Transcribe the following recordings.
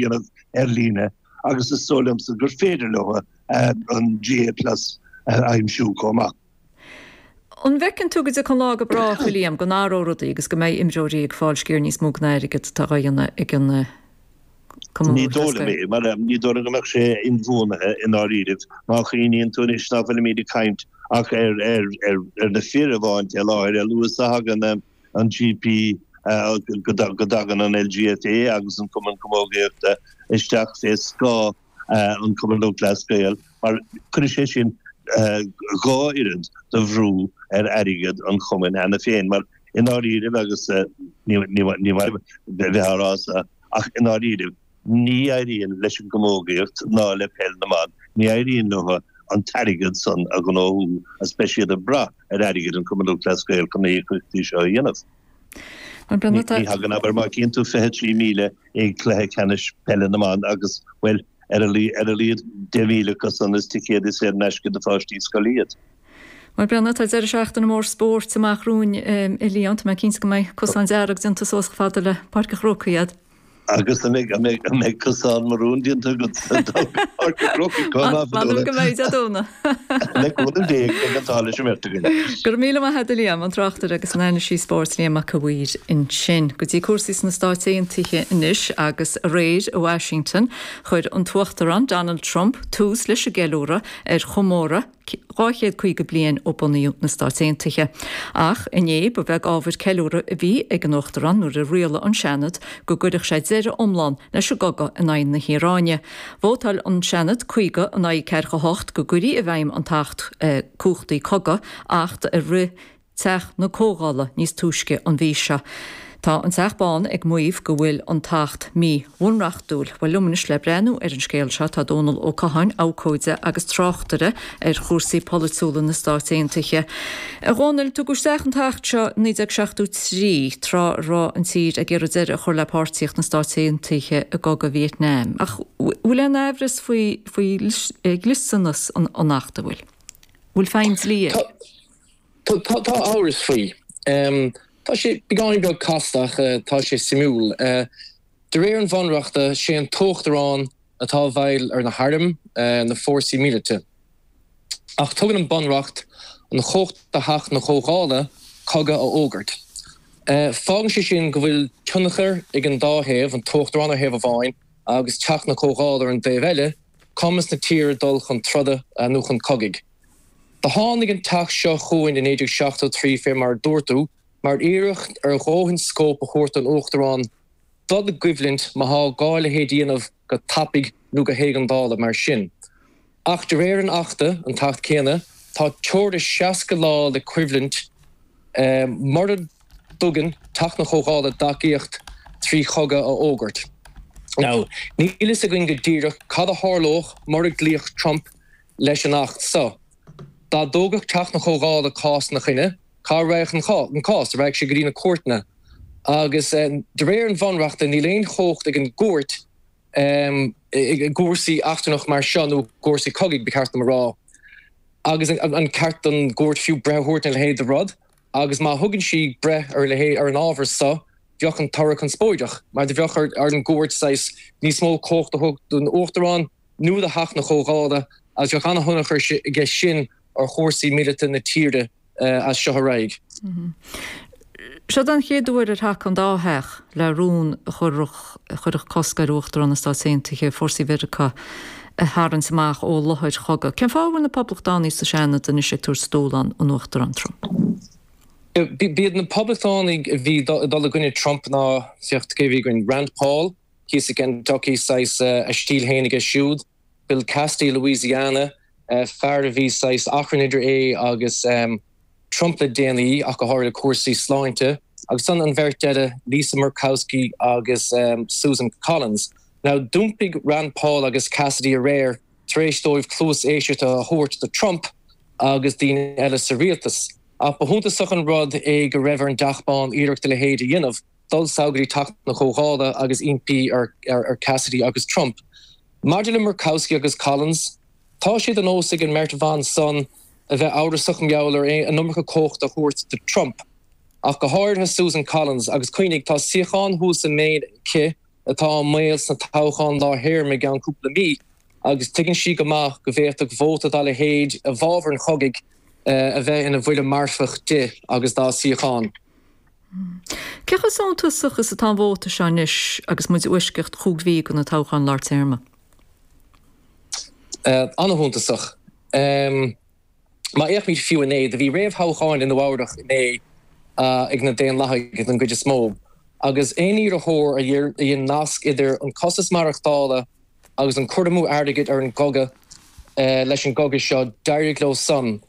dhéanamh ar líne agus is dóigh liomsa gur féidir leo an GAA Plus a aimsiú chomh maith. An bhfeiceann tú go dtiocfaidh an lá go brách, a Liam, go n-athróidh rudaí agus go mbeidh imreoirí ag fáil sciar níos mó den airgead atá á dhéanamh ag an Cumann Lúthchleas Gael? Ní dóigh liom é, mar ní dóigh liom go mbeadh sé inbhuanaithe i ndáiríribh. Má chuimhníonn tú anois nach bhfuilimid ag caint ach ar na fir amháin i láthair, a luas a thagann an GPA go dtagann an LGFA agus an Cumann Camógaíochta isteach fé scáth an Cumann Lúthchleas Gael mar cuirfidh sé sin dhá oiread de bhrú ar airgead an chumainn cheana féin mar i ndáiríribh agus ní maith a bheith á rá ach i ndáiríribh, Ní éiríonn leis an gcamógaíocht ná le peil na mban, ní éiríonn leo an t-airgead san a ghnóthú agus beidh siad ag brath ar airgead an Chumann Lúthchleas Gael chun na híocaíochtaí seo a dhéanamh. Ní thagann, abair, má chíonn tú 23,000 i gcluiche ceannais peile na mban agus, bhuel, ar a laghad 10,000 acu san is ticéadaí saor in aisce do pháistí scoile iad. Mar Brenna, tá deireadh seachtaine mór spóirt amach romhainn a Liam. Tá mé cinnte go mbeidh cosán dearg déanta suas chomh fada le Páirc an Chrócaigh agat. Agus an mbeidh cosán marún déanta agat sa Páirc an Chrócaigh chomh maith? M'anam go mbeidh, a Dhóna. Le cúnamh Dé go mbeidh an t-ádh leis an bheirt againn. Go raibh míle maith agat a Liam, an tráchtaire agus an anailísí spóirt Liam Mac an Mhaoir ansin. Go dtí cúrsaí sna Stáit Aontaithe anois, agus aréir i Washington chuir an tUachtarán Donald Trump tús leis an gceiliúradh ar chomóradh, dhá chéad caoga bliain ó bunaíodh na Stáit Aontaithe. Ach inné, ba bheag ábhar ceiliúrtha a bhí ag an Uachtarán nuair a rialaigh an Seanad go gcuirfeadh sé deireadh iomlán leis an gcogadh in aghaidh na hIaráine. Vótáil an Seanad caoga in aghaidh ceathracha hocht go gcuirfí i bhfeidhm an tAcht Cumhachtaí Cogaidh, acht a rith Teach na Comhdhála níos túisce an mhí seo. Tá an Teach Bán ag maíomh go bhfuil an tAcht míbhunreachtúil. Bhuel, liom anois, le breathnú ar an scéal seo, tá Dónall Ó Catháin, abhcóide agus tráchtaire ar chúrsaí polaitiúla na Stáit Aontaithe. A Dhónaill, tugadh isteach an tAcht seo i 1973, tráth a raibh an tír ag iarraidh deireadh a chur le páirtíocht na Stáit Aontaithe i gcogadh Vietnam. Ach bhfuil aon amhras faoi dhlisteanas an Achta, bhfuil feidhm dlí air? Tá amhras faoi. Tá sé beagáinín beag casta ach tá sé suimiúil. De réir an bhunreachta, sé an t-uachtarán atá i bhfeighil ar na hairm, na fórsaí míleata. Ach tugann an bunreacht an chumhacht do Theach na Comhdhála cogadh a fhógairt. Fágann sé sin go bhfuil tionchar ag an dá thaobh, an t-uachtarán ar thaobh amháin agus Teach na Comhdhála ar an dtaobh eile, ar chumas na tíre dul chun troda nó chun cogaidh. Do tháinig an t-acht seo chugainn i 1973, fé mar a dúirt tú, mar iarracht ar dhóthain scóip a thabhairt don Uachtarán dul i gcoimhlint má thá gá a leithéid a dhéanamh go tapaidh nó go héigeandála mar sin. Ach de réir an achta, an t-acht céanna, tá teora 60 lá le coimhlint mura dtugann Teach na Comhdhála a dtacaíocht trí chogadh a fhógairt. níl fhios againn go díreach cad a tharlódh mura gcloífeadh Trump leis an Acht seo. Dá dtógfadh Teach na Comhdhála cás ina choinne, cá raghadh an cás? Raghadh sé go dtí na cúirteanna. Agus de réir an Bhunreachta, níl aon chumhacht ag an gcúirt i gcúrsaí eachtrannach mar seo, nó i gcúrsaí cogaidh, ba cheart dom a rá. Agus an ceart don gcúirt fiú breith a thabhairt ar a leithéid de rud? Agus má thugann sí breith ar a leithéid, ar an ábhar so, bheadh an toradh conspóideach, mar do bheadh ar an gCúirt saghas níos mó comhacht a thabhairt don Uachtarán, nó do Theach na Comhdhála, agus bheadh an-thionchar aige sin ar chúrsaí míleata na tíre as seo ar aghaidh. Seo an chéad uair ar thacaigh an dá Theach, le rún a chuirfeadh a chuirfeadh iachall ar Uachtarán na Stát Aontaithe fórsaí Mheiriceá a tharraingt amach ó láthair chogaidh. Cén fáth a bhfuil na Poblachtánaigh sa Seanad anois ag tabhairt a ndúshlán don Uachtarán Trump? B'iad na Poblachtánaigh a bhí ag dul i gcoinne Trump ná, féach cé a bhí againn, Rand Paul, thíos i gKentucky, saghas a stíl féin aige siúd, Bill Cassidy, Louisiana, fear a bhí saghas achrann idir é agus Trump le déanaí ach go háirithe cúrsaí sláinte, agus an bheirt eile, Lisa Murkowski agus Susan Collins. Now d'iompaigh Rand Paul agus Cassidy aréir tar éis dóibh cluas éisteachta a thabhairt do Trump agus daoine eile sa rialtas. Ach ba shuntasach an rud é go raibh ar an dTeach Bán iarracht a leithéid a dhéanamh. Dul suas go dtí Teach na Comhdhála agus impí ar Cassidy agus Trump. Maidir le Murkowski agus Collins, tá sé de nós ag an mbeirt bhan san a bheith amhrasach i ngeall ar an iomarca comhachta a thabhairt do Trump. Ach go háirithe Susan Collins. Agus cuimhnigh, tá suíochán thuas i Maine aici atá i mbaol sna toghcháin lár-théarma i gceann cúpla mí agus tuigeann sí go maith go bhféadfadh vóta dá leithéid i bhfábhar an chogaidh a bheith ina bhuille marfach di agus dá suíochán. Cé chomh suntasach is atá an vóta seo anois agus muid i bhfoisceacht chúig mhí do na toghcháin lár téarma? An-shuntasach. Má fhéachaimid fiú inné, do bhí réamhthoghcháin i Nua-Eabhrac inné ag na Daonlathaigh den gcuid is mó, agus aon iarrthóir a dhein nasc idir an costas maireachtála agus an cur amú airgid ar an gcogadh leis an gcogadh seo, d'éirigh leo san.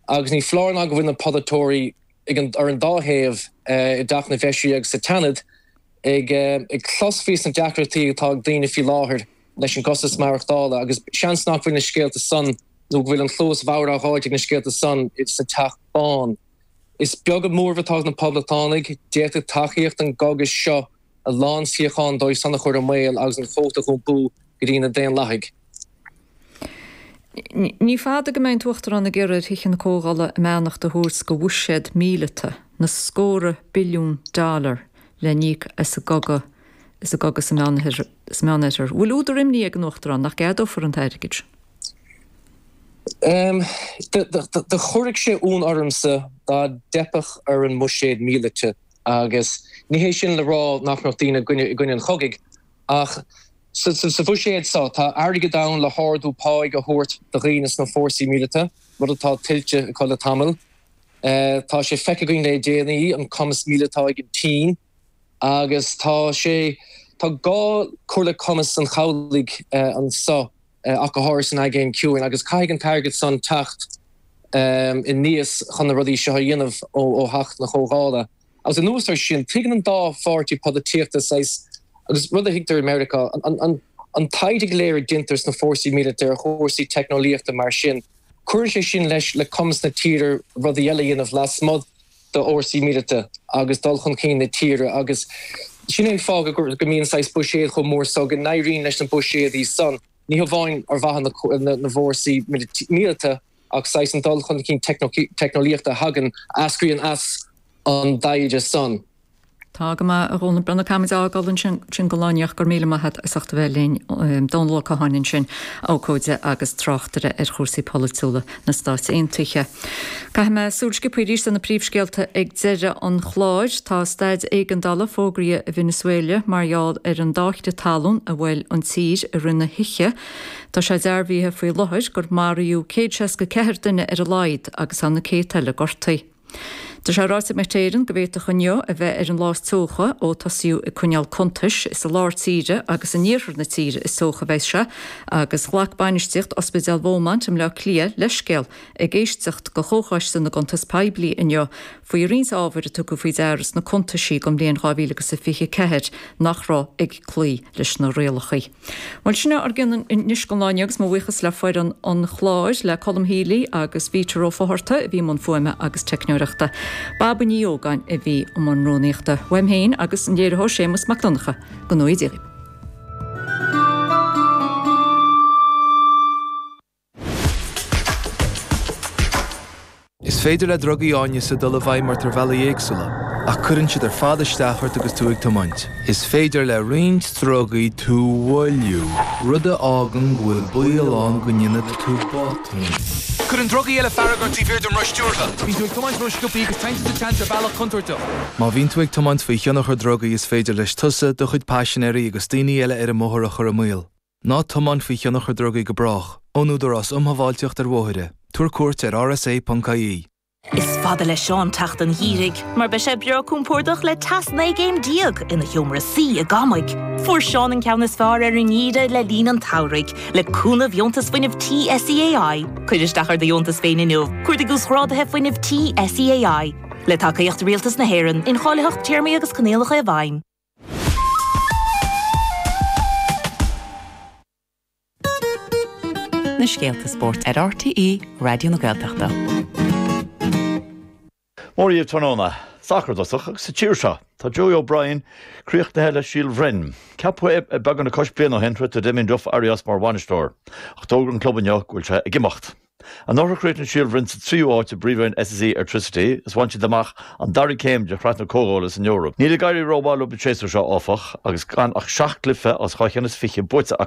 Agus ní foláir ná go bhfuil na polaiteoirí ar an dá thaobh i dTeach na bhFeisirí agus sa tSeanad ag clos fé sna deacrachtaí atá ag daoine faoi láthair leis an gcostas maireachtála agus seans nach bhfuil na scéalta san nó go bhfuil an chluas bhodhar á thabhairt ag na scéalta san sa Teach Bán. Is beag an mórlach atá ag na Poblachtánaigh. D'fhéadfadh tacaíocht an chogaidh seo a. a lán suíochán dóibh san a chur i mbaol agus an vóta a dh'iompú go dtí na Daonlathaigh. Ní fada go mbeidh an t-uachtarán ag iarraidh ar Thithe na Comhdhála a mbeannacht a thabhairt do bhuiséad míleata na scórtha billiún dollar le n-íoc as an gcogadh sa Meánoirthear. Bhfuil údar imní ag an uachtarán nach gceadófar an t-airgead sin? Do chuirfeadh sé ionadh ormsa dá dteipfeadh ar an mbuiséad míleata Agus ní hé sin le rá nach mbeadh daoine i gcoinne an chogaidh, ach sa bhuiséad seo tá airgead ann le hardú páigh a thabhairt do dhaoine sna fórsaí míleata, rud atá tuillte acu le tamall. Tá sé feicthe againn le déanaí an cumas míleata atá ag an tSín, agus tá gá cur le cumas an chabhlaigh anseo. ach go háirid san Aigéan Ciúin, agus caithfidh an t-airgead san teacht aníos chun na rudaí seo a dhéanamh ó Theach na Comhdhála. Agus anuas air sin, tuigeann an dá pháirtí polaitíochta saghas, agus rud a thuigtear i Meiriceá, an taighde go léir a deintear ins na fórsaí míleata ar chúrsaí teicneolaíochta mar sin, cuireann sé sin leis le cumas na tíre rudaí eile a dhéanamh lasmuigh d'fhórsaí míleata agus dul chun cinn na tíre agus sin é an fáth go mbíonn saghas buiséad chomh mór so go n-éiríonn leis na buiséadaí san, ní hamháin ar mhaithe na bhfórsaí míleata ach saghas an dul chun cinn teicneolaíochta a thagann, a eascraíonn as an dtaighde san. Tá go maith, a Dhónaill. Bhuel, caithfidh muid a fhágáil ansin, sin go leor ach go raibh míle maith agat as ucht a bheith linn. Dónall Ó Catháin ansin, abhcóide agus tráchtaire ar chúrsaí polaitiúla na Stáit Aontaithe. Caithfidh muid súil sciobtha arís ar na príomhscéalta ag deireadh an chláir. Tá staid éigeandála fógraithe i Venezuela mar gheall ar an dá chrith talún a bhuail an tír i rith na hoíche. Tá sé dearbhaithe faoi láthair gur maraíodh céad seasca ceathair duine ar a laghad agus tá na céadta eile gortaithe. Tá sé ráite ag Met Éireann go bhféadfadh inniu a bheith ar an lá is teocha ó tosaíodh ag coinneáil cuntais. Is i lár tíre agus in iarthar na tíre is teocha a bheidh sé agus ghlac bainistíocht Ospidéal Beaumont i mBleá Cliath leithscéal ag éisteacht de Chomhchoiste na gCuntas Poiblí inniu faoi roinnt ábhar a tugadh faoi deara sna cuntaisí don bhliain 2024 nach raibh ag cloí leis na rialacha. Bhuel, sin é ár gcionn anois don lá inniu agus mo bhuíochas le foireann an chláir, le Colm Healy agus Peter Ó Fátharta a bhí i mbun fuaime agus teicneoireachta. Bríd Ní Ógáin a bhí i mbun rúnaíochta. Uaim féin agus an léiritheoir Séamas Mac Donncha, go nuige. Is féidir le drugaí áineasa dul i bhfeidhm ort ar bhealaí éagsúla, ach cuireann siad ar fad isteach ort agus tú ag tiomáint. Is féidir le roinnt drugaí tú a mhoilliú, rud a fhágann go bhfuil baol ann go ndéanfaidh tú botún. Cuireann drugaí eile fearg ort taobh thiar den roth stiúrtha. Bíonn tú ag tiomáint rósciobtha agus téann tú sa tseans ar bhealach contúirteach. Má bhíonn tú ag tiomáint faoi thionchar drugaí is féidir leis tusa, do chuid paisinéirí agus daoine eile ar an mbóthar a chur i mbaol. Ná tiomáin faoi thionchar drugaí go brách. Ón Údarás Um Shábháilteacht ar Bhóithre. Tabhair cuairt ar rsa.ie. Is fada le Seán teacht an Gheimhridh mar beidh sé breá compordach le teas 19 gcéim ina sheomra suí i gCorcaigh. Fuair Seán an ceann is fearr ar an nGeimhreadh le linn an tsamhraidh le cúnamh Dheontas Fuinnimh Tí SEAI. Cuir isteach ar do dheontas féin inniu, cuardaigh Uasghráduithe Fuinnimh Tí SEAI. Le tacaíocht Rialtas na hÉireann, incháilitheacht Téarmaí agus Coinníollacha i bhfeidhm. na scéalta spóirt ar RTÉ Raidió na Gaeltachta. Mora daoibh tráthnóna, sacar i dtosach agus sa tír seo. Tá Joey O'Brien críochnaithe le Síol Bhroin. Ceapadh é beagán os cionn bliain ó shin, tar éis do Damien Duff éirí as mar bhainisteoir, ach d'fhógair an club inniu go bhfuil sé ag imeacht. Anuraidh chríochnaigh Síol Bhroin sa tríú áit i bpríomhroinn SSE Airtricity is bhain siad amach an dara céim de shraith na comhdhála san Eoraip. Níl ag éirí rómhaith leo an séasúr seo, áfach, agus gan ach seacht gcluiche as dhá cheann is fiche buaite acu.